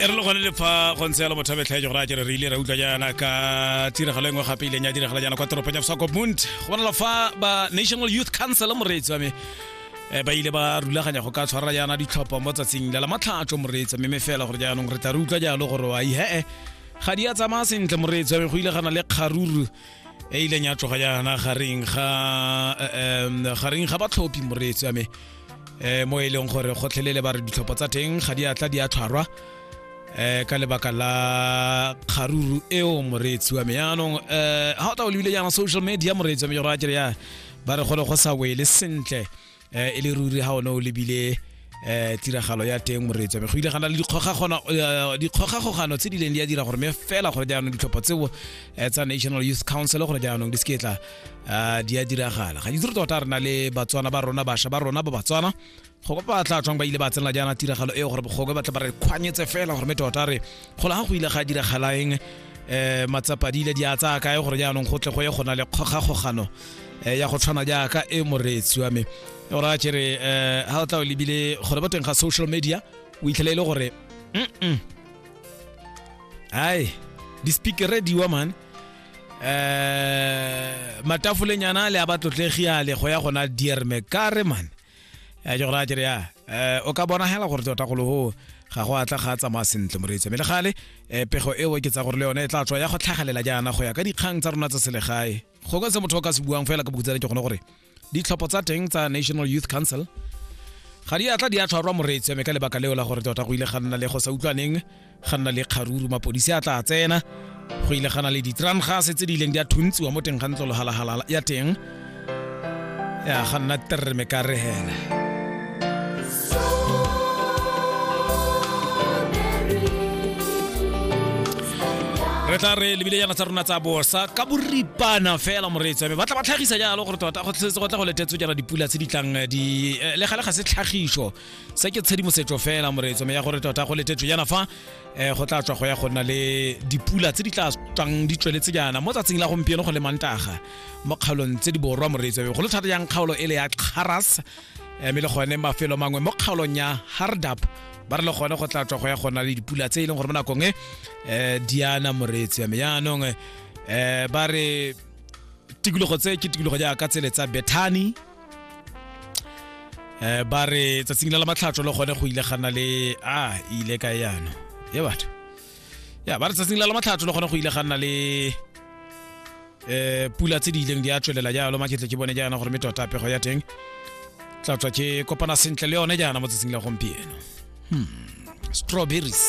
e re le gone le fa go ntse yalo motho a betlhaetso gore a kere re ile ra utlwa jaana ka tiragalo e nngwe gape ileng ya diragala jaana kwa toropong ya bosakopmont go bonala fa ba national youth council moreetsi wa me eh, ba ile ba rulaganya go ka tshwarela jaana ditlhopho mo tsatsing la lamatlhatso moreetsi mme fela gore jaanong re tla re utlwa jalo gore wa ihe ga di a tsamaya sentle moreetsi wa me go ile gana le kgaruru e ileng ya tloga yana gareng ga um gareng ga batlhophi moreetsi ame um mo e leng gore gotlhelele ba re ditlhopho tsa teng ga di atla di a tshwarwa um ka lebaka la kgaruru eo moreetsi wa me yaanong um ga o ta o lebile yana social media moreetsi wa me jora a kere ya ba re gole go sa wele sentle eh, e le ruri ga one o lebile eh tiragalo ya teng moreetso me go ile gana le dikgogagano eh, dikgogagogano tse di leng di a dira gore me fela gore jaanong ditlhopho tseo eh, tsa national youth council gore jaanong di seketla eh, di a diragala ga itse re tota re na le batswana ba rona basha ba rona ba batswana go ba tla tswang ba ile ba tsenela jaana tiragalo eo gore bogobe ba tla ba re kgwanyetse fela gore me tota re go laga go ile ga diragalaeng um matsapa di ile di a tsaya kae gore jaanong go tle go ye go na le kgogakgogano um ya go tshwana jaaka e moreetsi wa me o raya kere um ga o tla o lebile gore ba teng ga social media o itlhela e le gore mm ai di-speakere diwa man um matafolenyana le a ba tlotlegi ale go ya gona dierme kare man ya jo ra kere ya eh o ka bona hela gore tota go loho ga go atla ga tsamaya sentle moreetsi mme le gale eh, pego eo ke tsa gore le yone e tla tswa ya go tlhagalela jaana go ya ka dikgang tsa rona tsa selegae go ka se motho o ka se buang fela ka bokutsana ke gone gore ditlhopho tsa teng tsa national youth council ga di atla di a tshwarwa moreetsi mme ka lebaka leo la gore tota go ile ga nna le go sa utlwaneng ga nna le kgaruru mapodisi a tla tsena go ile gana le ditran gase tse di ileng di a thuntsiwa mo teng ga ntlo logalagalala ya teng ya ga nna terre me ka re hela re tla re lebile yana tsa rona tsa bosa ka boripana fela moreetsi me ba tla ba tlhagisa jalo gore tota go tlhetse go tla go letetswe jana dipula tse di tlang di eh, le gale ga se tlhagiso se ke tshedimosetso fela moreetso me ya gore tota go letetso yana fa um go tla tswa go ya go nna le dipula tse di tla tswang di tsweletse jaana mo tsatsing la gompieno go le mantaga mo kgaolong tse di borwa moreetso go le thata yang kgaolo e le ya kgaras mme le gone mafelo mangwe mo kgaolong ya hardap ba re le gone go tla tswa go ya go nna le dipula tse e leng gore mo nakong e um diana moreetso ya me yaanong um ba re tikologo tse ke tikologo jaaka tsele tsa bethani eh ba re tsatsing la matlhatso le gone go ile gana le a ile ka yana ye batho ya ba re tsatsing la matlhatso le gone go ile gana le eh pula tse di ileng di a tswelela jalo maketle ke bone jaana gore me tota pego ya teng tla tswa ke kopana sentle le yone jaana mo tsatsing la gompieno hmm strawberries